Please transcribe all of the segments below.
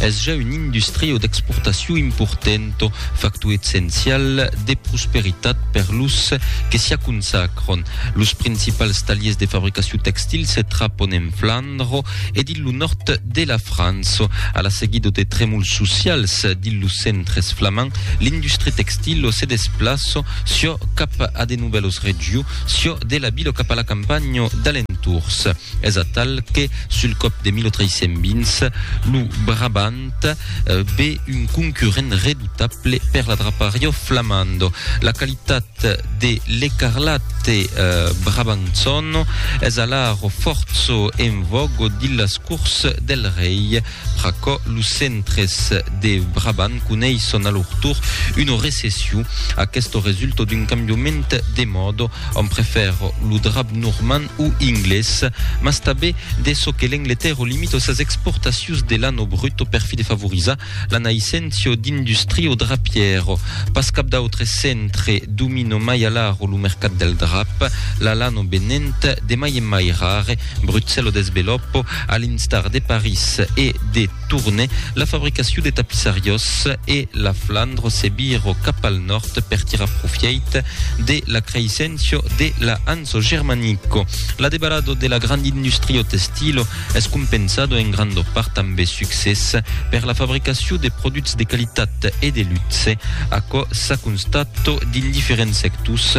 Es ja un industrio d'exportacion important, factor essencial de prosperitat per los que s'i aconsacron. Los principals taliers de fabricacion textil se trapon en Flandro e dins lo nòrd de la França. A la seguida de tremols socials dins los centres flamands, l'industria textila se desplaça siò cap a de novèlas regions, siò de la vila cap a la campanha d'alentours. Es atal que Sul còp de 1320, lo Brabant ve un concurrent redoutable per la Drapario Flamando. La qualitat de l'Ecarlate Brabançon es alara fòrço en vògo dins las cors del rei. Pr'aquò, lo Centre-es de Brabant coneis son alortor una recession. Aquesto resulta d'un cambiament de mòda, òm prefèra lo drap normand o inglés, mas tanben de çò que l'Angletèrra limita sas exportacions de lana bruta per fi de favorizar la naisséncia d'industria o drapièra. Pas cap d'autre centre domina mai alara lo mercat del drap, la lana venent de mai en mai rare, Brutzello desvelòpo a l'instar de París e de Tourne la fabricacion de tapissariós e la Flandro se viro cap al nòrd per tirar profièit de la creissencio de la Hanso Germanico. L'adebarado de la grand industrio testilo es compensado en grando part amb de succès per la fabricacion de produchs de qualitat e de luxe, aquò s'a constato dins diferents sectors,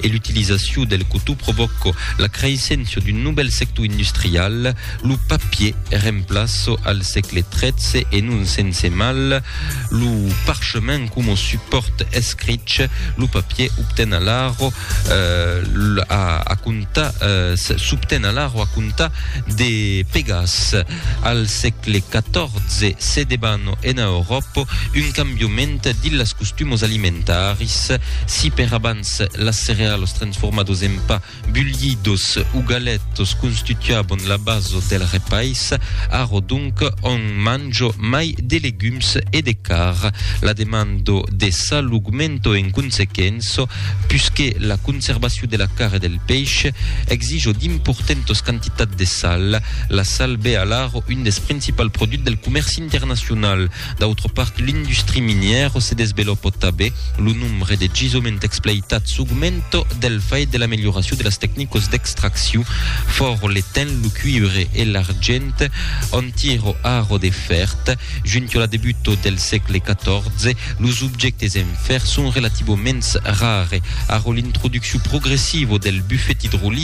e l'utilizacion del cotó provòco la creissença d'un novèl sector industrial, lo papier remplaça al sègle XIII e non sense mal lo parchement coma supòrt escrich, lo papier obten alara a comptar s'obten alara a comptar de pegas. Al sègle XIV se debano ena Euròpa un cambiament dins las costumos alimentaris. Si per abans las cerealos transformados en pa, bulhidos o galetos constituabon la baso del repais, arro donc òm manjo mai de legums e de carn. La demando de sal augmento en consequença, pusque la conservacion de la carn e del peish exijo d'importentos quantitats de sal. La sal be alara un des principal produch del comèrci internacional. D'autra part, l'industri minièra se desveloppa tabé. Lo nombre de gisoments expleitats augmenta del fait de l'amelioracion de las tecnicas d'extraccion. Fòra l'etain, lo cuiure e l'argent an tira ara de fèrt. Junta la debuta del sègle XIV, los objèctes en fèr son relativaments rare. Ara l'introduccion progressiva del bufet idrolic,